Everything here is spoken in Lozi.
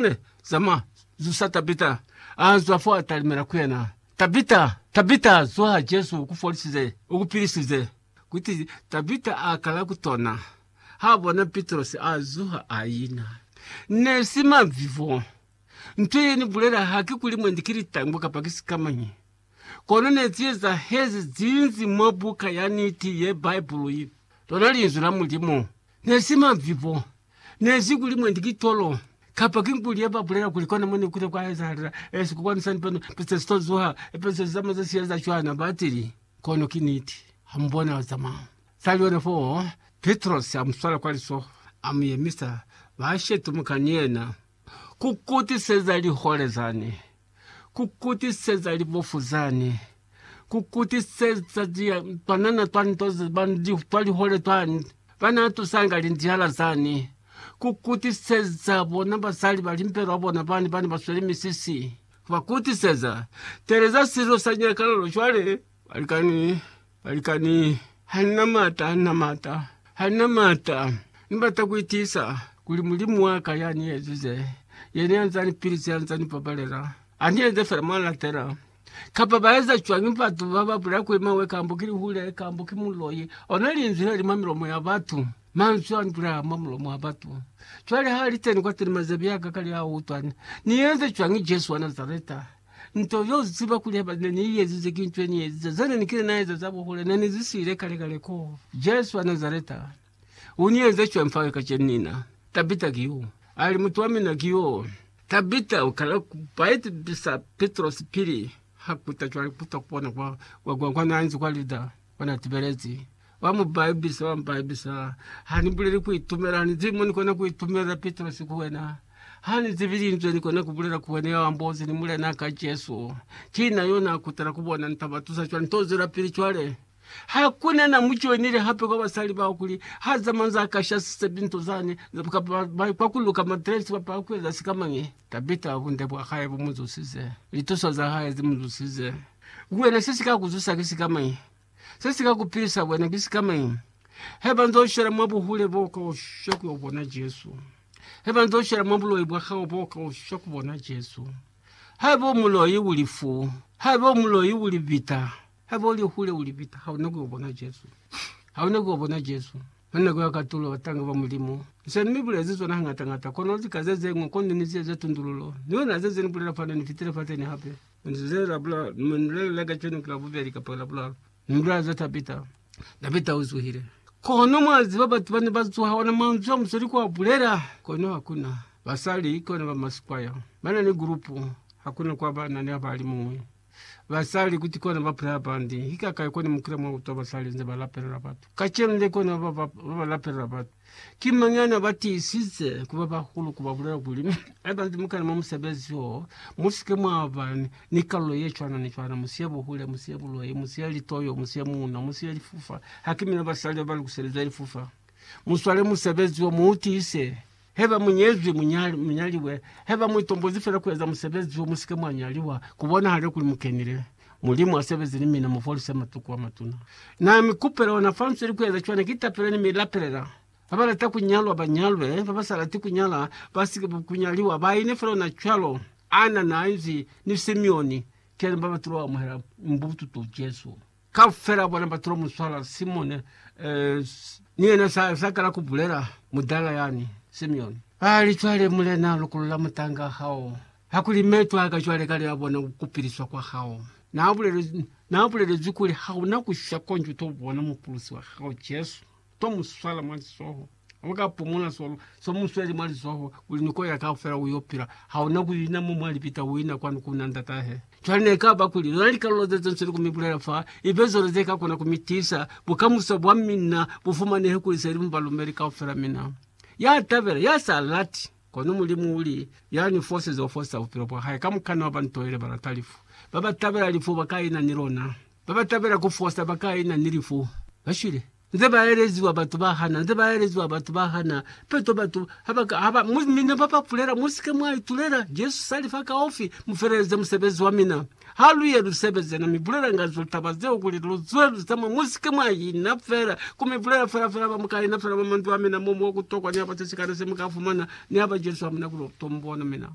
Ne zama zusa Tabita, a zwa fo a talimela ku yena, Tabita, Tabita, zuha, Jesu uku folisize, uku pilisize. Kuti Tabita a kala ku tona, ha bona Pitrosi a zuha a ina. Ne si mavivo. Nto ye ni bulela ha ki kuli mwendi ki litangu kapa ki sikamañi. Kono ne zi ezahezi zinzi mwa buka ya niti ye Bibulu, lona Linzwi la Mulimu. Ne si mavivo, Nezi kuli mwendi ki tolo kapa ki nkuli ye ba bulela kuli kona mo ne kile kwa ezahalela esi ku kwanisa lipendo peste si to zuha. Epeso za mazazi ye za cwana ba tili, Kono ki niti, ha mu bona za mao. Sa liyona fo, Pitrosi a mu swala kwa lisoho, a mu yemisa, ba shetumu ka ni yena. Ku kutiseza lihole zani, ku kutiseza libofu zani, ku kutiseza twanana twa nto twa lihole twa ba na tusanga lindiala zani, ku kutiseza bona basali ba limpelo ba bona bani ba ne ba sweli misisi, ku ba kutiseza. Teleza silo sa nyakalalo cwale, balikani. Balikani, hanina maata, hanina maata, hanina maata. Nibata kuitiisa kuli Mulimu waka yaniyezize, yena yanzanipilisi, yanzanipabalela, aniyenze feela mwanatela. Kapa baeza cwañi batu bababulela kuli mawe kambo ki lihule, kambo ki muloi? Ona linzwi leli mwa milomo ya batu, manzwi anibulela mwa mulomo wa batu. Cwale haaliteni kwateni mazebi aka kali autwa, Niyenze cwañi Jesu wa Nazareta? Nto yo ziba kuli haba ne ni iezize ki nto ye ni eziza. Zane ni kile na eza za buhule, ne ni zi siile kale kale koo. Jesu wa Nazareta u ni eze cwañi fa le kacenu? Nina, Tabita ki yo. Ali, Mutu wa mina ki yo. Tabita, u kala ku paipisa Pitrosi pili ha kuta cwale, kuta ku bona kwa, kwa, kwa, kwa na nzi kwa Lida. Ona tibelezi wa mu baibisa wa mbaibisa ha ni buleli ku itumela ha ni zibi mo ni kona ku itumelela Pitrosi ku wena ha ni zibi linzwe ni kona ku bulela ku wena ya ambozi ni mulena ka Jesu ki na yo na kutela ku bona ni ta ba tusa cwani to zwela pili cwale ha ku na na mu joinile hape kwa basali bao kuli ha zamanza ka shasise binto zani kwa ku luka matresi kapa ku eza sikamañi Tabita, bunde bwa hae bu mu zusize, lituso za hae zi mu zusize. Ku wena, se si ka ku zusa ki sikamañi? Se si ka ku pilisa wena ki sikamañi? He ba nz'o shwela mwa buhule, bo ka oshwa ku yo bona Jesu. He ba nz'o shwela mwa buloi bwa hao, bo ka oshwa ku bona Jesu. Haiba u muloi, u lifu. Haiba u muloi, u libita. Haiba u li hule, u li pita, ha u na ku yo bona Jesu. Ha u na ku yo bona Jesu. Mwa nako ya katulo, batanga ba Mulimu ni se ni mi bulezi zona hañata-ñata, kono lika ze ze ñwi, kono ni si eza tundululo. Ni luna ze ze ni bulela fani, ni fitile fateni hape. Ni ze la bula, ni mi ni lelele kacenu ki Labubeli kapa ki Labulalu, ni mi bulela za Tabita. Tabita u zuhile. Kono mwa ziba, batu ba ne ba zuha, ona manzwi a musali kwa bulela, kono ha ku na. Basali ki ona ba masikwaya, ba na ni gulupu, ha ku na kwa ba na ni abalimuñwi. Basali kuti kona ba pula hapandi. Ki kakai kona mukila mwa kutwa basali nze ba lapelela batu? Kacenu le kona ba ba, ba ba lapelela batu. Ki mañi ana ba tiisize kuba bahulu ku ba bulela kuli, Haiba nze mukana mwa musebezi wo, musike mwa ba ni kalulo ye cwana ni cwana, musiye buhule, musiye buloi, musiye litoyo, musiye muuna, musiye lifufa? Ha ki mina basali ba ba lukiselizwe lifufa? Muswale musebezi wo, mu u tiise. Haiba mu nyezwi, mu nyaliwe. Haiba mu itombozi fela ku eza musebezi wo, mu si ke mwa nyaliwa. Ku bonahale kuli mu kenile. Mulimu a sebeze ni mina, mu folise matuku a matuna. Na mi kupela ona fa nzweli ku eza cwana. Ki tapela ni mi lapelela ba ba lata ku nyalwa ba nyalwe, ba ba sa lati ku nyala ba si ke ku nyaliwa. Ba ine fela ona cwalo. Anna na Angie ni Simeon, ki yani ba ba tulo amuhela mbututu Jesu. Kaufela bona batu ba muswala Simone, ni yena sa, sa kala ku bulela, mudala yani, Simeoni. Bali, Cwale, Mulena, lukulula mutanga hao, hakuli me twaaka cwale kale ya bona ku piliswa kwa hao. Na bulelezwi, na bulelezwi kuli hauna ku sha konji uto bona Mupulusi wa hao, Jesu. To mu swala mwa lizoho. Lu ka pumula so, so mu sweli mwa lizoho, kuli ni koya kaufela uyo pila. Ha una ku ina mo mwa lipita, u ina kwanu ku na Ndata he. Cwale ne ka ba kuli lona likalulo ze ze nsweli ku mi bulela fa, ibe zona ze ka kona ku mi tisa, bukamuso bwa mina bu fumanehe kuli se li mu balumeli kaufela mina. Ya tabela, ya sa lati. Kono Mulimu u li, Ya ni fosize, u fosisa bupilo bwa hae. Ka mukana wa bantu ile ba lata lifu. Ba ba tabela lifu ba ka ina ni lona. babatabela kufosa bakaina ni lifu bashwile nze baeleziwa batu bahana nze baeleziwa batu bahana peto batu habaka haba mu mina babapulela musike mwaitulela Jesu sali fa kaufi mufeleleze musebezi wa mina haluye lusebeze na mibulela nga zo taba zeo kuli luzwe luzama musike mwaina fela kumibulela fela fela bamukaina fela ba manzwi a mina momo wa kutokwa ni haba sesikale se muka fumana ni haba Jesu amuna kulo tombona mina